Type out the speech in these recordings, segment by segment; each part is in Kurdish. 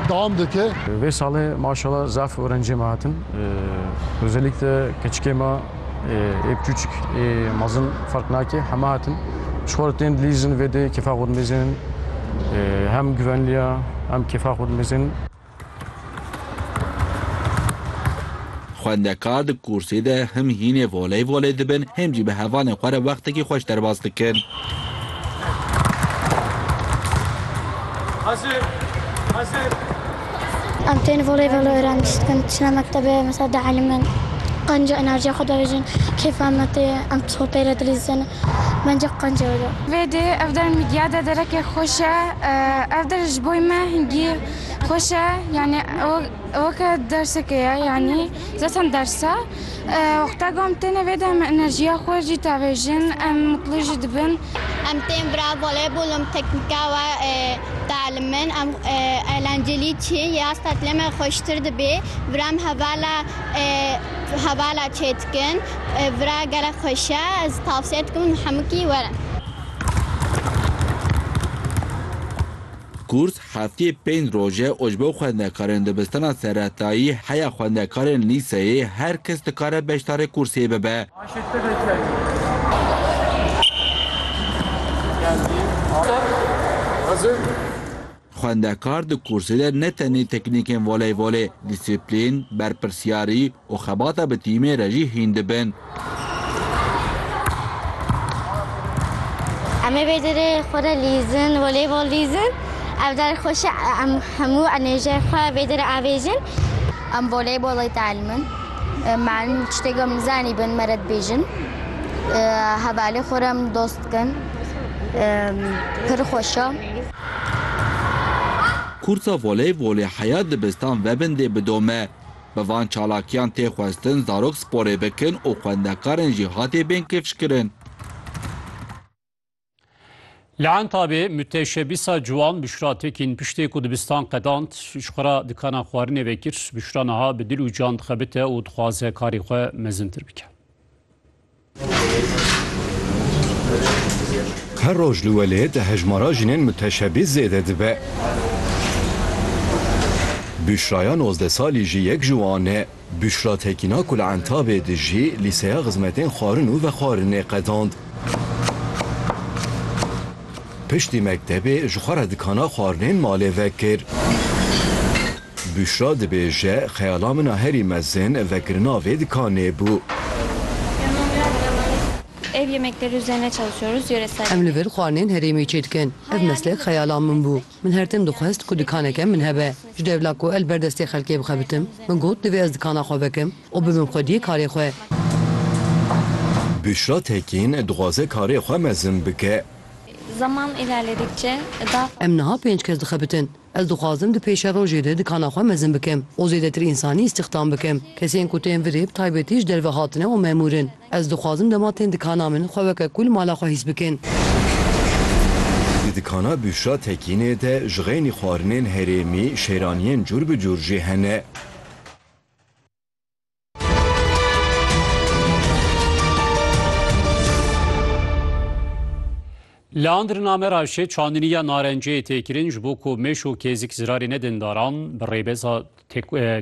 dewam dike. Vê salê maşallah zaf orencê me hatin. Özellikle keçikê me ê piçuçik ê mezin ferq nake heme hatin. Ji xwe re tên dilîzin vê dê kêfa xwe dimêzin. Hem givenliya hem kêfa xwe dimêzin. Xwendekar di kursê de him hînê voley voley dibin him jî bi hevalên xwe re wextekî xweş derbas dikin. Hazır, hazır. Em tên voleybol öğrenmiş. Em çine mektebe mesela da elimin. Qanca enerjiye xwe davêjin. Keyfa me tê. Em sohbêre dilîzin. Bence qanca öyle. Vê dê ev der midya de derekê xweş e. Ev der ji boy me hingî xweş e. Yani ew ke dersekê ye yani zaten ders e. Wexta ku em têne vê de em enerjiya xwe jî davêjin, em mutlu jî dibin. Em tên vira voleybolê û teknîka we dielîmin. Em eğlencelî çi ye? Ya stetilê me xweştir dibê. Vira em hevala hevala çê dikin. Vira gelek xweş e. Ez tavsiye dikim hemûkî werin. Kurt Hefteyê pênc roj e û ji bo xwendekarên dibistana seretayî heya xwendekarên lîseyê her kes dikare beşdarê kursiyê bibe. Xwendekar di kursê de ne tenê teknîkên voleybolê, dîsîplîn, berpirsyarî, Û xebata bi tîmê re jî hîn dibin. Em ê vê derê xwe re lîzin, voleybol lîzin. Ev der xweş e, em hemû enêrjiyê xwe vê derê avêjin. Em voleybolê dielîmin, malin min tiştê ku em nizanîbin me re dibêjin. Hevalê xwe re em dost dikin, pir xweş e. Kûrsa voleybolê heya dibistan vebin dê bidome. Bi van çalakiyan tê xwestin zarok sporê bikin û xwendekarên jî hatê bên kifşkirin. Li Entabê mûteşebîsa ciwan Bişra Tekîn piştê ku dibistan qedand ji xwe re dikana xwarinê vekir. Bişra niha bi dil û can dixebite û dixwaze karê xwe mezintir bike. Her roj li welêt hejmara jinên muteşebîs zêde dibe. Büşraya nozdeh salî jî yek ji wan e. Büşra Tekîna ku li Entabê dijî, lîseya xizmetên xwarin û vexwarinê qedand. Piştî mektebê ji xwe re dikana xwarinên malê vekir. Büşra dibêje, Xeyala min a herî mezin vegirina vê dikanê bû. Ev yemekleri üzerine çalışıyoruz, yöresel Em li vir xwarinên herêmê çêdikin. Ev meslek xeyala min bû. Min her tim dixwest ku dikaneke min hebe. Ji devla ku el ber destê xelkê bixebitim, min got divê ez dikana xwe vekim û bibim xwediyê karê xwe. Büşra Tekîn, dixwaze karê xwe mezin bike. Zaman ilerledikçe daha Em niha pênc kes dixebitin. Ez dixwazim di pêşerojê de dikana xwe mezin bikim û zêdetir însanî îstîxdam bikim. Kesên ku tên virê bi taybetî ji derve hatine û memûr in. Ez dixwazim dema tên dikana min xwe weke ku li mala xwe hîs bikin. Di dikana Büşra Tekînê de ji xeynî xwarinên herêmî, şêraniyên cûr bi cûr jî hene. Li Andirname Ravşê çandiniya narenciyê tê kirin ji bo ku mêş û kêzik zirarê nedin daran bi rêbeza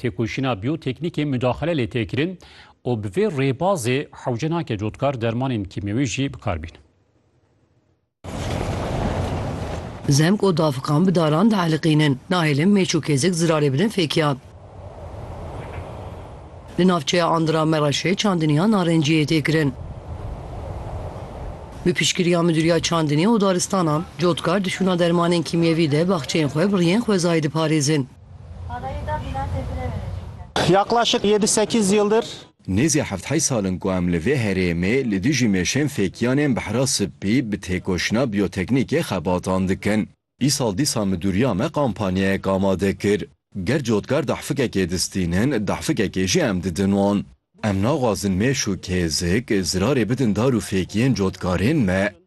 têkoşîna biyoteknîkê mudaxile lê tê kirin û bi vê rêbazê hewce nake cotkar dermanên kîmyewî jî bikar bînin. Zemg û dafiqan bi daran dieliqînin. Nahêlin mêç û kêzik zirarê bidin fêkiyan. Li navçeya Andira Mereşê çandiniya narencî yê têkirin. Bi piştgiriya Midûriya Çandinê û Daristanan, cotkar di şûna dermanên kîmyevî de baxçeyên xwe bi riyên xwezayî diparêzin. Yaqlaşik yedi sekîz yildir. Nêzî heft heyt sal in ku em li vê herêmê li dijî mêşên fêkiyanên Behra Sipî bi têkoşîna biyoteknîkê xebatan dikin. Îsal dîsa midûriya me kampanyayek amade kir. Ger cotkar dahfikekê distînin, dahfikekê jî em didin wan. Em naxwazin mêş û kêzik zirarê bidin dar û fêkiyên cotkarên me.